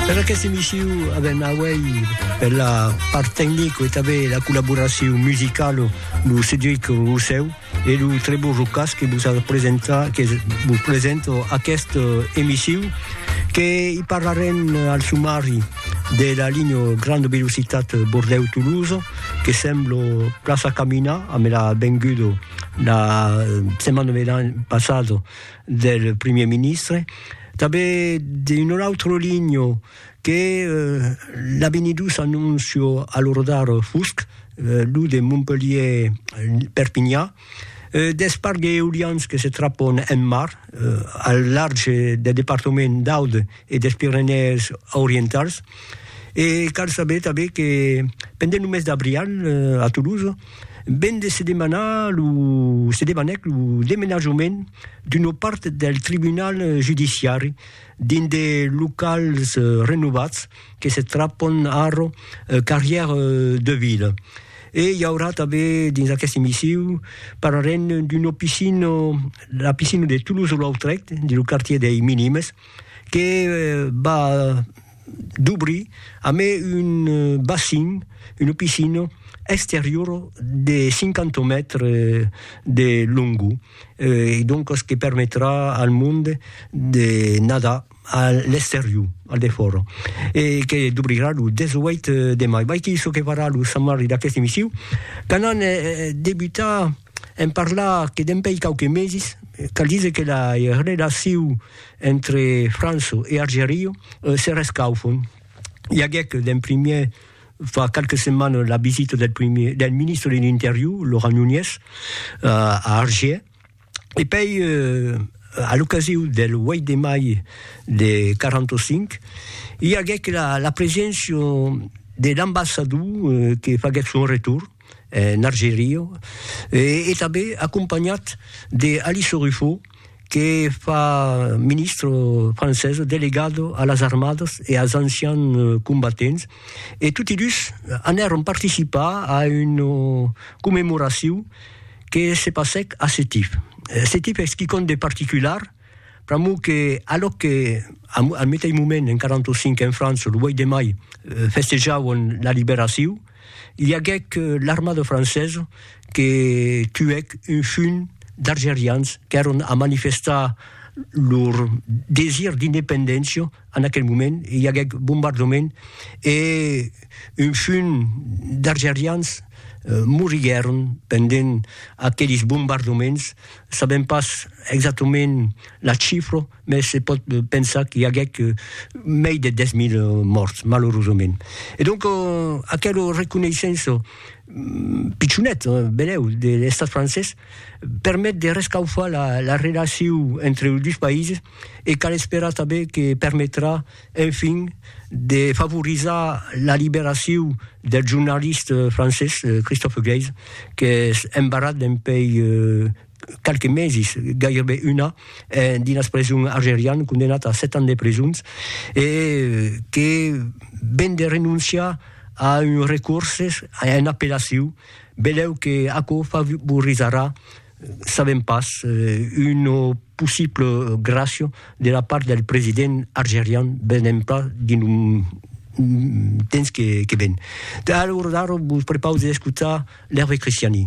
Per aquesta emissió avèm auèi per la part tecnico e tanben la collaboracion musicalo lo Cedric Rossèu e lo Trebo Rocas que vos a presentat que vos presento aquesta emissió que i parlarem al sumari de la linha granda velocitat Bordèu-Tolosa que semblo plaça caminar a me l'à vengudo la setmana passada del Primièr Ministre, tanben d'un autre ligno que l'a benidus annuncio a lo rodar fusc, lo de Montpelhier-Perpinha, deth parc d'eolians que se trapon en mar al larg deth departament d'Aude e des Pirenèes Orientals. E cal saber tanben que pendent lo mes d'abrial a Toulouse, Ven de se demanar lo se demanèc lo demenajament d'una part del tribunal judiciari dins de locals renovats que se trapon ara Carrière de Ville. E i aurà tanben dins aqueste emisiu parlarem d'una piscina, la piscina de Toulouse-Lautrec, dins lo quartier dei Minimes, que va dubrir amé un bassin, una piscina exteriora de 50 mètres de longor e doncas que permetrà al monde de nadar a l'exterior, al defòra e que dubrirà lo 18 de mai. Vai que çò que farà lo Sant Marri d'aqueste emissiu, quand an debutat en parlar que dempèi quauques meses, cal díser que la relacion Entre Franço e Argerio se rescaufon. I aguèc d'en primièr fa qualques setmanes la visita del primièr, del ministre de l'Interior, Laurent Nunez, a Argier, e pei a l'ocasiu del 8 de mai de 45 i aguèc la preséncia de l'ambassador que faguèt son retorn. en Argeria, e tanben acompanhat de Alice Ruffo, que fa ministre francesa delegado a las armadas e als ancians combatents, e toti dus anèron participar a una commemoracion que se passèc a Setif. Setif es quicòm de particular, pr'amor que alòc que al meteis moment en 45 en França, lo 8 de mai, festejavan la liberacion, I aguec l'armada francesa que tuèc un junh d'argerians qu'èron a manifestar lor desir d'independéncia en aquel moment, i aguec bombardament e un junh d'argerians moriguèron pendent aquelis bombardaments, sabèm pas exactament la chifra. mès se pòt pensar qu'i aguèc mei de 10.000 mòrts, malorosament. E donc, aquelo reconeissenço pichonet, benèu, de l'Estat francés permet de rescaufar la relacion entre los dus païses e cal esperar tanben que permetrà, enfin, de favorizar la liberacion del jornalist francés Christophe Gleizes, qu'es embarrat dempuèi qualques meses, gaireben un an, dins preson algerian, condemnat a 7 ans de presons, e que ven de renonciar a un recurses, a un apelaciu, beleu que aquò favorizarà, sabem pas, una possible gràcia de la part del president algerian, venem pas dins lo temps que ven. Alor ara vos prepausi d'escotar l'Hervé Christiani.